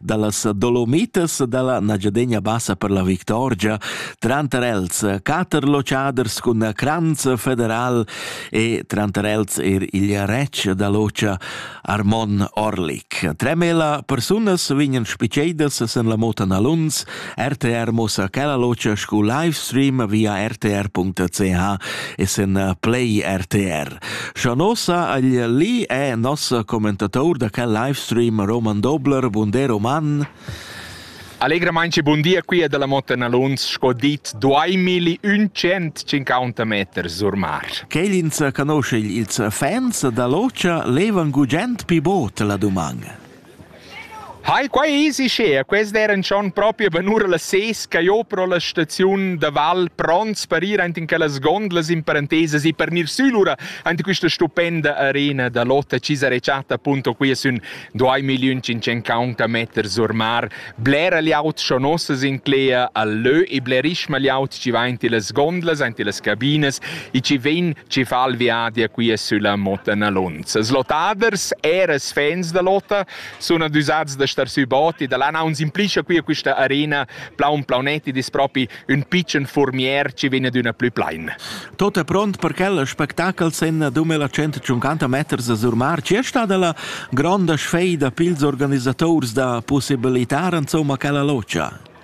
dallas Dolomitas dalla Nagiadegna bassa per la Victorgia, tranter els quater locaders cun Cranz federal e tranter els er il retg da Locha Armon Orlik. Tremela persunas vegnan spiceidas sen la Mota Naluns, RTR mossa quella locha scu livestream via rtr.ch e sen Play RTR. Schanossa agl li è nossa commentator da quel livestream Roman Dobler. Bun day, Roman. Allegramain e bun dia qui da la Motta Naluns, sco dit, duai milli un cent cinquanta meter surmar. Quelins canosce ils fans da l'ocia levan gugent pi bot la dumang. Hai, quei easy share, quest eran schon propi benura las ses che jeu pro la staziun da Val pronts per ir ant in quellas gondlas in parentesas e per nir sülura ant questa stupenda arena da lotta Cisare Chatta appunto qui sün 2550 meters or mar Blera glieud sco nossa s'inclegia al lö e blerischma glieud chi va in tillas gondlas, aint illas cabinas e chi vegn chi fa il viadi a quia sülla Motta Nalunza. Slotaders, eir els fans da Lotta, sun adüsats da star sü bot e da là naun s'implischa quia quista arena plaun plaunet ed es propi ün pitschen furmier chi vegn adüna plü plain. Tot è pront per quel spectacol sen 2500 meters a Surmar. Ci è stata la gronda sfeida pils organisatori da possibilità insomma quella loggia?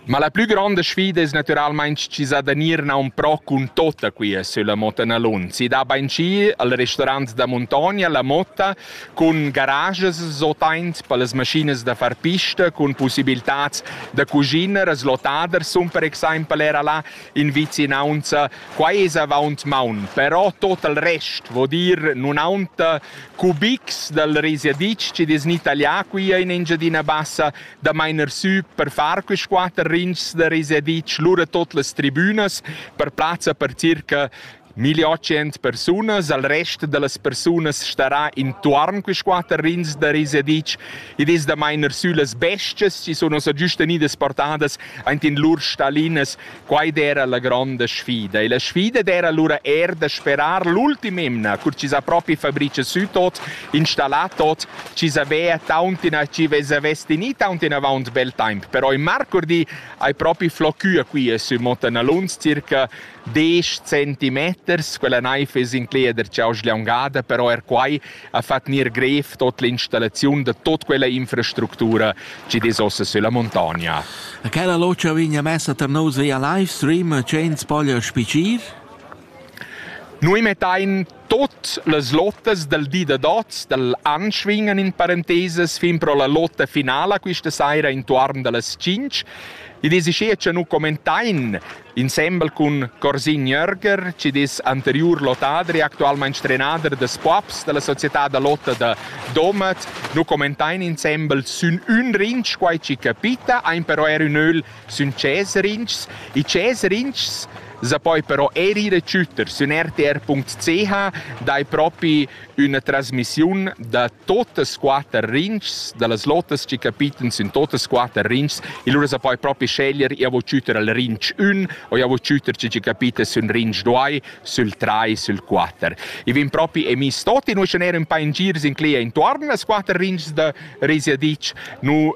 Ma la più grande sfida è naturalmente ci sa da nirna un pro con tota qui sulla Motta Nalun. Si da Banci al ristorant da Montogna la Motta cun garajas zotaint pellas maschinas da far pista, cun pussibiltats da cuschiner, slotaders sun per exaimpel era là in vicinaunza. Quai es avaunt maun, però tot il rest vo dir nun aunta cubics dal risiadic chi'd es gnü taglià quia in Engiadina Bassa da mainer sü per far quist quatter rinchs da risiadic, lura tot las tribünas per plazza per circa 1.800 persunas, al rest da las persunas starà intuorn quist quatter rins da Risedic. Id es da mainer süllas bestias chi sun ossa giüst vegnidas portadas aint in lur stalinas. Quai d'eira la gronda sfida. E la sfida d'eira lura eir da sperar l'ultima emna, cur chi s'ha propi fabricha sü tot, installà tot, chi savea tauntina chi vez avess tegnì tauntina avaunt bel temp. Però in marcurdi hai propi flocchü a quia sü Mottanaluns circa Desch centimeters, quella naiv es incleda ch'eu sgliangada, però eir quai ha fat gnir grev tot l'installaziun da tot quella infrastructura chi'd es ossa sülla muntogna. Quella lotscha vegna messa tar nus via livestream, ch'ins poglia spicir? Nui mettain Tut las lottas dal di da dots dal an svingan in parentesas fin pro la lotta finala quista saira intuorn da las tschinch. Id es uschea cha nu commentain insembel cun Corsin Jörger, chi'd es anteriur lottadri, actualmaing trenader da spuobs da la società da lotta da Domat, nu commentain insembel sün ün rinch quai chi capita, aint però eir ün ögl sün Ceserintschs. I Ceserintschs sa poi però eir ir e tschütter sün rtr.ch dai propi üna trasmissiun da totas quatter rinchs, da las lotas chi capitan sün totas quatter rinchs e lura sa poi propi sceglier io vo tschütter al rinch 1 o io vo tschütter chi chi capita sün rinch 2, sül 3, sül 4. I vegn propi emis tot in uschè ner ün pa in gir sin clia intuorn las quatter rinchs da Risia Ditsch. Nu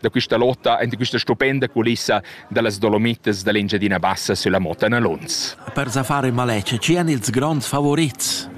da questa lotta en questa stupenda culissa dallas Dolomitas da l'Engiadina Bassa sulla Motana Luns. Per fare malece, ci hanno ils grands favorits?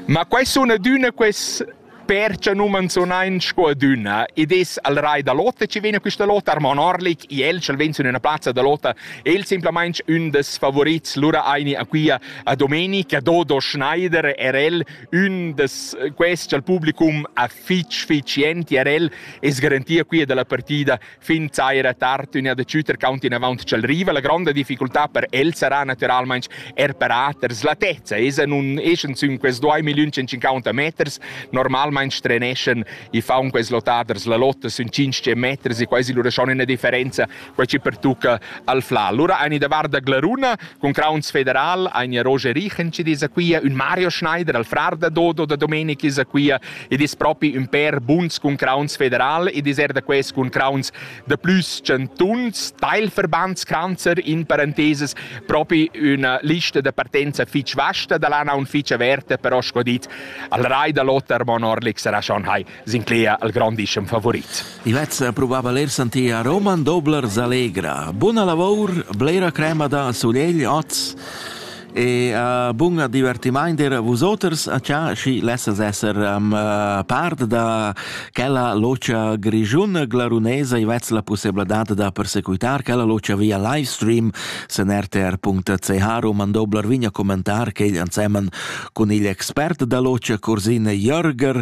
Ma quai sono adüna quest perce nu menzionain sco adüna ed es al rai da lotta ci vegna quista lotta Armon Orlik i el ch'el vegn sün üna plazza da lotta el semplamaing ün des favorits lura aini a quia a Domenica Dodo Schneider er el ün des quest ch'al publicum ha fitg fitg entir el e garantia qui dalla partida fin saira tard üna da Schüter count in avant ch'el riva la gronda difficultà per el sarà naturalmaing er per aters la tezza esa nun eschan sün quels 2500 meters normalmaing treneschan i faun quels lottaders la lotta sün 500 meters e quasi lura schon üna differenza quei chi pertucca al Fla. Lura ein i da varda Glaruna cun crauns federal, ein i Roger Richen chi dis a quia, ün Mario Schneider al frar da Dodo da Domenic is a quia, e dis propi ün per buns cun crauns federal, e dis er da quels cun crauns de plus centuns, Teilverbandskranzer in parentheses propi üna lista da partenza fitch vasta da lana un fitch averta, però sco dit, al rai da Lothar Mon Orlik sarà schon hai. sincleia al grondischem favorit. Ivezza pruvava ler santia Roman Dobler Allegra. Buna lavor, blera crema da sulegl oz e uh, bun divertimaint er vusoters a cha schi lessas esser um, uh, part da quella locia grigiun glarunesa i vez la possibilidad da persecuitar quella locia via live stream sen rtr.ch Roman Dobler vigna commentar che igl ansemen cun il expert da locia Corsine Jörger